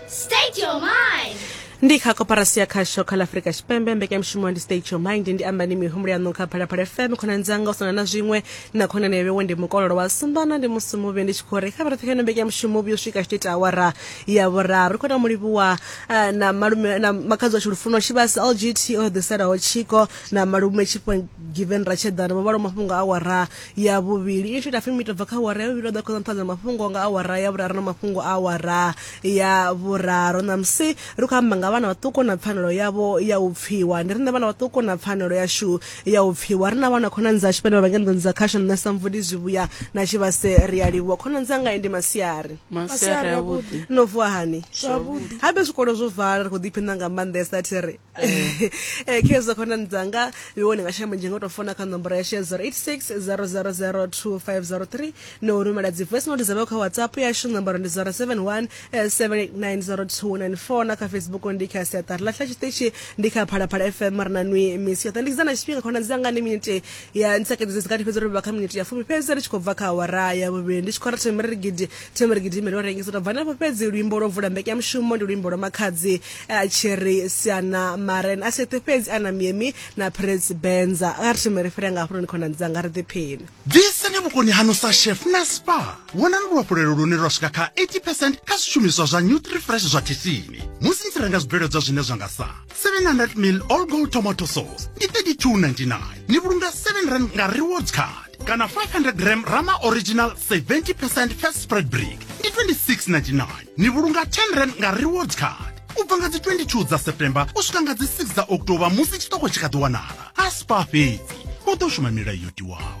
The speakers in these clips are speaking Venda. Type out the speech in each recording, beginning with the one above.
State your mind. ndi kha koporasi ya khasho kha ḽa afurika tshipembe mbekanyamushumo ndi state your mind ndi amba ndi mihumbulo yaṋu kha phalaphala fm khonani dzanga u sana na zwiṅwe na khonani yawe ndi mukololo wa sumbana ndi musi muvhi ndi tshi khou ri kha vha roṱhe kha ino mbekanyamushumo vhuyo swika tshi ita awara ya vhuraru ri khou na mulivhuwa eh, na malume na makhadzi washu lufuno tshivhasi lgt o ḓiselaho tshiko na malume tshifho given ratshedana vho vhalo mafhungo a awara ya vhuvhili i tshi ita fumi i tobva kha awara ya vhuvhili vha ḓo khoza nṱhanza mafhungo nga awara ya vhuraru na mafhungo a awara ya vhuraru ṋamusi ri khou amba nga vhana vhaṱuku na pfanelo yavho ya u pfiwa ndi riṋe vhana vhaṱuku na pfanelo yashu ya u pfiwa ri na vhana khonani dzashu vhane vha vha ngenḓoni dza khasho nṋe sa mvudi zwivhuya na tshivhase ri a livhuwa khonani dzanga ndi masiari masiari avhuḓi no vuwa hani zwavhuḓi habe zwikolo zwo vala ri khou ḓiphiṋa nga maanḓesa thi ri eh khezwa khona ndzanga iwone nga shamba nje ngoto fona kha nomboro ya she 0860002503 no rumela dzi voice note dzavho kha whatsapp yashu nomboro ndi 0717890294 na kha facebook ndi kha siaṱari lahla tshiṱitshi ndi kha phalaphala fm ri na nwi misi yoṱhe ndi kizana tshifhinga khona ndzanga ndi miniti ya ntsakedzedzi kati fhedzi ro vha kha miniti ya fumi fhedzi ri tshi khou bva kha awara ya vhuvhili ndi tshi khou ratha miri gidi Themba ri gidime ro rengisa tabva nafho fhedzi luimbo lwo vula mbekanyamushumo ndi luimbo lwa makhadzi eh, Cherry Siana Maren a seṱhe fhedzi ana miemi na Prince Benza a ri theme ri fhira nga hafhunoni khonani dzanga ri ḓiphine Ḓisani vhukoni hanu sa chef na spa. Wanani luhafhulelo lune lwa swika kha 80 percent kha zwishumiswa zwa Nutrifresh zwa Thithini musi ni tshi renga zwibveledzwa zwine zwa nga sa 700 mil all gold tomato sauce ndi 32.99 ni vhulunga 7 rand nga rewards card kana 500 gram rama original 70% fat spread brick ndi 26.99 ni vhulunga 10 rand nga rewards card u bva nga dzi 22 dza september u swika nga dzi 6 dza october musi tshiṱoko tshi kha ḓi wanala a spa fhedzi u ḓo shuma milayo yo tiwaho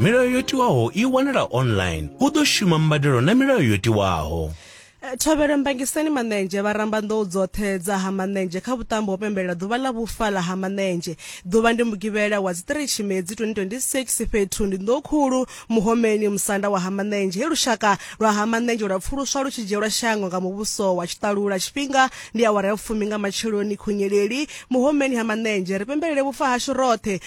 milayo yo tiwaho i wanala online u ḓo shuma mbadelo na milayo yo tiwaho eh, thovhelo mbangiseni maṋenzhe vha ramba nḓou dzoṱhe dza ha maṋenzhe kha vhuṱambo ho pembelela ḓuvha ḽa vhufa ḽa ha maṋenzhe ḓuvha ndi mugivhela wa dzi 3 tshimedzi 2026 fhethu ndi nḓou khulu muhomeni musanda wa ha maṋenzhe he lushaka lwa ha maṋenzhe lwa pfuluswa lu tshi dzhielwa shango nga muvhuso wa tshiṱalula tshifhinga ndi awara ya fumi nga matsheloni khunyeleli muhomeni ha maṋenzhe ri pembelele vhufa hashu roṱhe